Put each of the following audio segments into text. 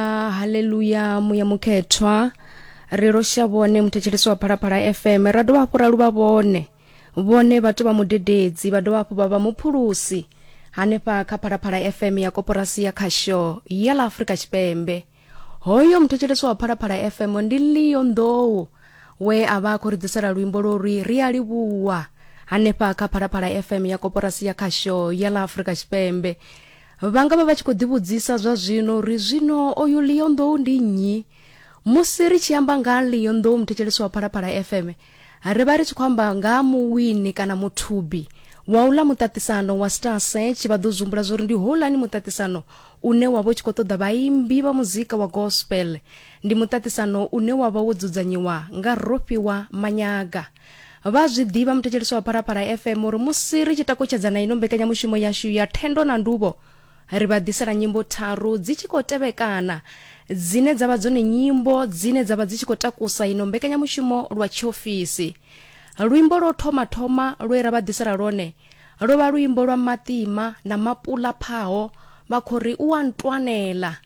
Ah, haleluya muya mukhethwa ri losha vhone muthetshelesi wa phalaphala fm ra dovha hafhu ra luvha vhone vhone vhathu vha mudededzi vha dovha hafhu vha vha muphulusi hanefha kha phalaphala fm ya koporasi ya khasho ya ḽa afurika tshipembe hoyo muthetshelesi wa phalaphala fm ndi leo nḓou we a vha a khou ri ḓisela luimbo lori ri a livhuwa hanefha kha phalaphala fm ya koporasi ya khasho ya ḽa afurika tshipembe Vha nga vha vha tshi khou ḓivhudzisa zwa zwino uri zwino oyu Leon Nḓou ndi nnyi? Musi ri tshi amba nga Leon Nḓou muthetshelesi wa Phalaphala FM, ri vha ri tshi khou amba nga muwini kana muthubi wa uḽa muṱaṱisano wa Star Search. Vha ḓo zwi zwo uri ndi houlani muṱaṱisano une wa vha u tshi khou ṱoḓa vhaimbi vha muzika wa gospel. Ndi muṱaṱisano une wa vha wo dzudzanyiwa nga Rofhiwa Manyaga. vha zwi ḓivha muthetshelesi wa pharapara fm uri musi ri tshi takutshedza na ino mbekanyamushumo yashu ya thendo na nduvho ri vha ḓisela nyimbo tharu dzi tshi khou tevhekana dzine dza vha dzone nyimbo dzine dza vha dzi tshi khou takusa ino mbekanyamushumo lwa tshiofisi luimbo lwo thoma thoma lwe ra vha ḓisela lwone lwo vha luimbo lwa maṱima na mapula phaho vha khou ri u a ntwanela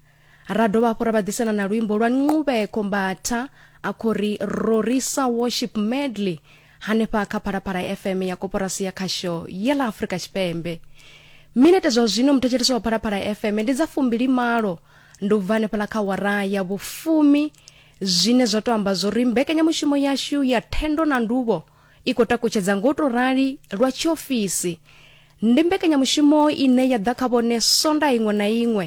ra dovha hafhu ra vha ḓisela na luimbo lwa nqubeko mbatha a khou ri rorisa worship medley hanefha kha phalaphala fm ya koporasi ya khasho ya ḽa afrika tshipembe minete zwa zwino muthetshelesi wa phalaphala fm ndi dza fumbili malo ndi u bva hanefhala kha wara ya vhufumi zwine zwa tou amba zwo ri mbekanyamushumo yashu ya thendo na nduvho i khou takutshedza nga u tou rali lwa tshiofisi. Ndi mbekanyamushumo ine ya ḓa kha vhone Sondaha iṅwe na iṅwe.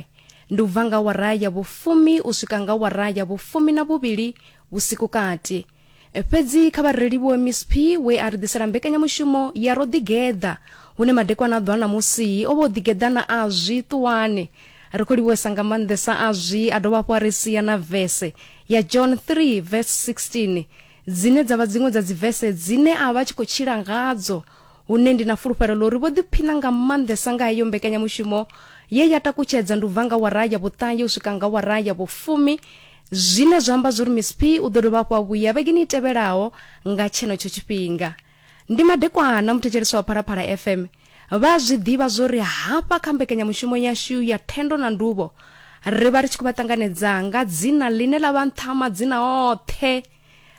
Ndi u bva nga awara ya vhufumi u swika nga awara ya vhufumi na vhuvhili vhusiku kati. Fhedzi kha vha ri livhuwe Miss P we a ri ḓisela mbekanyamushumo ya Ro Ḓigeḓa hune madekwana a ḓo a ṋamusi o vha o ḓigeḓa na Azwi Ṱuwani. Ri khou livhuwesa nga maanḓesa Azwi a dovha hafhu a ri sia na vese ya John 3 verse 16 dzine dza vha dziṅwe dza dzivese dzine a vha tshi khou tshila ngadzo hune ndi na fulufhelo ḽa uri vho ḓiphina nga maanḓesa nga heyo mbekanyamushumo ye ya takutshedza ndi u bva nga wara ya vhuṱahe u swika nga wara ya vhufumi zwine zwa amba zwa uri miss p u ḓo dovha hafhu a vhuya vhegeni i tevhelaho nga tshenetsho tshifhinga Ndi madekwana muthetshelesi wa Phalaphala FM vha zwi ḓivha zwo ri hafha kha mbekanyamushumo yashu ya thendo na nduvho ri vha ri tshi khou vha ṱanganedza nga dzina ḽine ḽa vha nṱha madzina oṱhe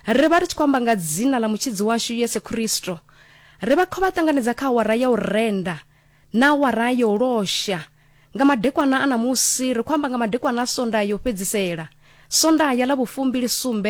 ri vha ri tshi khou amba nga dzina ḽa mutshidzi washu yesu khristo ri vha khou vha ṱanganedza kha awara ya u renda na awara ya u losha nga madekwana a ṋamusi ri khou amba nga madekwana a sondaha yo fhedzisela sondaha ḽa vhufumbili sumbe